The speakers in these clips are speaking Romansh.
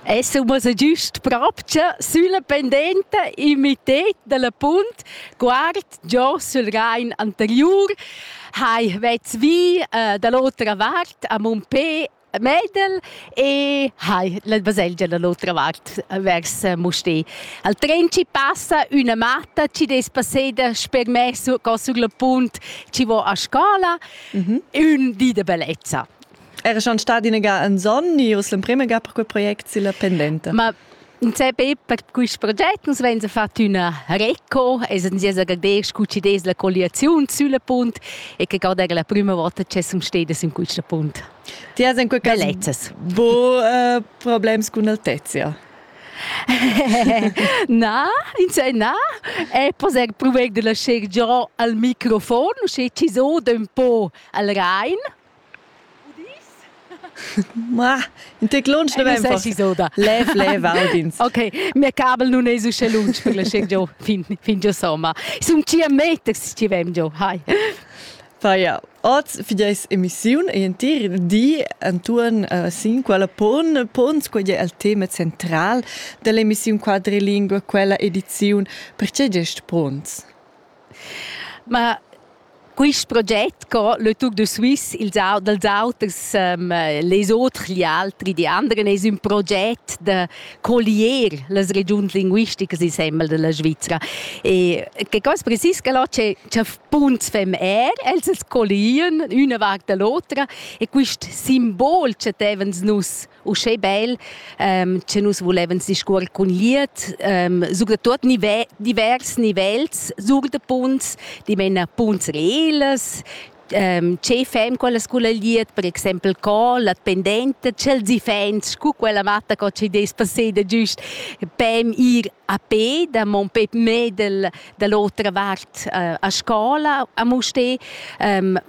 Essemos giust propcha sülla pendenta in mitted dalla punt guard giò sül Rain anteriur hai vets vi uh, da l'otra vart a Mumpé Medel e hai la baselgia dall'otra vart vers Musté. Al tren ci passa üna matta ci des passeda sper me co sur la punt ci vo a scola, mm -hmm. ün di de bellezza. Era schon stati in ga en son, e l'emprima ga per quel project si la pendente. Ma in CP per questi progetti uns vegn a far una reco, es en sias agradez scu des la colliaziun sulla punt e che garda la prima volta che sum stedes in questa punt. Ti has in quel caso bu uh, problems con altezia. na, insomma, na, e poser provare de lasciare già al microfon, usce ci so un po' al Rhein. Ma, in tec lunsch ne vem Lev, lev, Albins. Ok, mia cabel non es uschè lunsch per la sceg giò fin, fin giò somma. Sun cia meters ci vem giò, hai. Pa ja, oz fideis emissiun e entir di antuorn uh, sin quella pon pons quella è il tema central dell'emissiun quadrilingue, quella ediziun. Perché gest pons? Ma quist proget co le Tour de Suisse ils au dals auters ehm les oters gli altri di anderen es ün proget da collier las regiuns linguisticas insembel da la Svizra. E che cosa precis ch'el ho che cha spunts fem eir, els as collien üna vart da l'otra e quist simbol chattevans nus uschè bel ähm, che nus voleven discuor cun liet ähm, sucre tot nive divers nivels sucre de punts di mena punts reles ähm, che fem con la scuola liet per exempel co la pendente cel zi fens cu quella matta co ci des passé de giust pem ir a pe da mon pep medel da l'otra vart uh, a scola a muste um,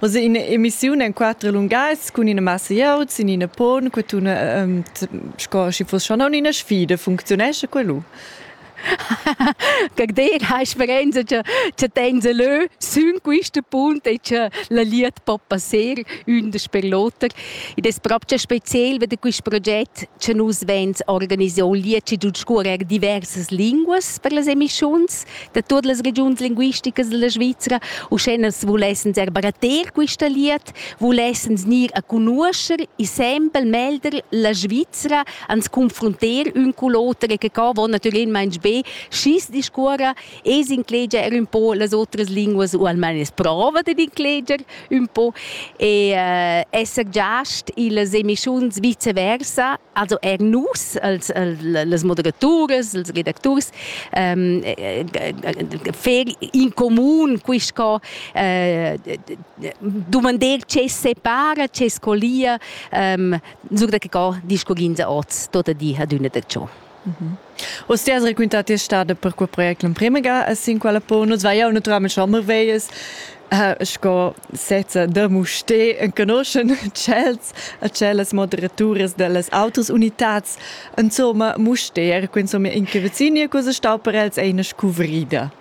Oz è ina emissiun en quattro lungas cun ina massa iaut sin ina pon che tuna um, sco sche fosse schon una sfida funzionesce quello. Как dire, ha esperienza che che tenza leu sün quista punt e che la liet po passer ündes per l'oter. Ed es proprio speziel ved quist proget che nus vens organisier liet ci giud scurer diversas linguas per las emischuns da tuot las regiuns linguisticas della Svizra, uscheners vulessens er baratter quista liet, vulessens gnir a conoscer e sempre melder la Svizra ans confronter ün cu l'oter e che ca vo natüralmaing be schi's discuorra e s'inclegia er ün po las otras linguas u almain es prova dad incleger un po e äh, esser giast illas emischuns viceversa, also er nus als, als moderaturas, als redacturs ähm, äh, fer in comun quisco äh, domandar ce separa, ce scolia ähm, sur da che co discuginza oz tota di ad una da ciò. Os ti has raquintà ti stada per quel project l'emprima ga a sin quella po nus vai jau naturalment schon marveias sco sezza da muste enconoschen tschels a tschellas moderaturas dellas autas unitats insomma muste er insomma in che vecini cosa stau per els eine scuvrida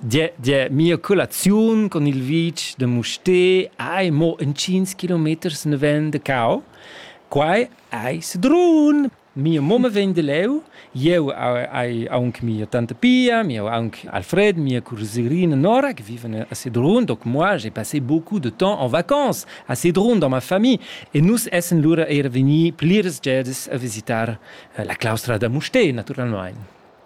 Die, die mia colaziun con il vitg de Musté ei mo in 5 kilometers naven de Cau. Quai ei sedrun. Mia mumma vegn de leu, jeu ai aunc mia tante Pia, mia aunc Alfred, mia cousine Nora che vivono a Sedrun, donc moi j'ai passé beaucoup de temps en vacances a Sedrun dans ma famille e nus essen lura era vegni pliras gedas a visitar la claustra da Musté naturalmein.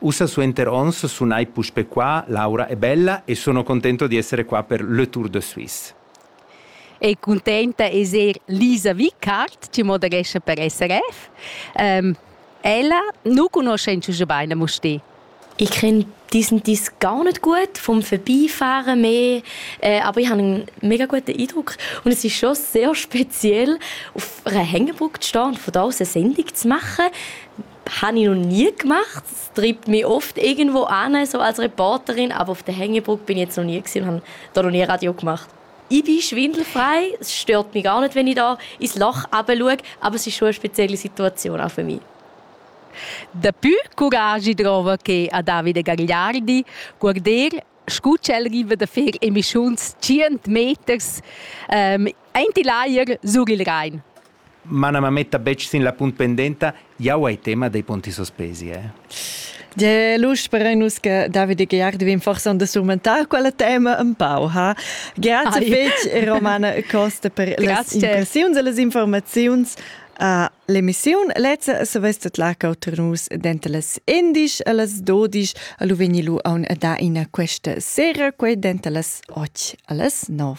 Ussa suenter onns sun ei puspe qua, Laura è bella e sono contento di essere qua per Le Tour de Suisse. È cuntenta d'esser Lisa Vickart, ti moderescha per SRF. Ähm, ella nu conosce inzwischen beine muss die. Ich finde diesen dies gar nicht gut vom Vorbeifahren mehr, äh, aber ich habe einen mega guten Eindruck und es ist schon sehr speziell, auf einer Hängebrücke zu stehen und von da aus eine Sendung zu machen. habe ich noch nie gemacht. Es treibt mich oft irgendwo an, so als Reporterin, aber auf der Hängebruck bin ich jetzt noch nie gewesen und habe da noch nie Radio gemacht. Ich bin schwindelfrei, es stört mich gar nicht, wenn ich da ins Loch schaue, aber es ist schon eine spezielle Situation auch für mich. Dapi coraggi trova che a Davide Gagliardi guarder scu ch'el riva da fer emischuns 100 meters ähm, aint il ajer sur il Rhein. Mana mametta betg sin la punt pendenta, jau hai tema dei ponti sospesi. Eh? De lusch per nus che David e Gerard vin forse da surmentar quella tema un pau ha. Grazie fetg e Romana Costa per las impressiuns e las informaziuns a l'emissiun Lezza se vestet la cauter nus denter las 11 e las 12 a lu vegni lu aun a da ina questa sera quei denter las 8 a las 9.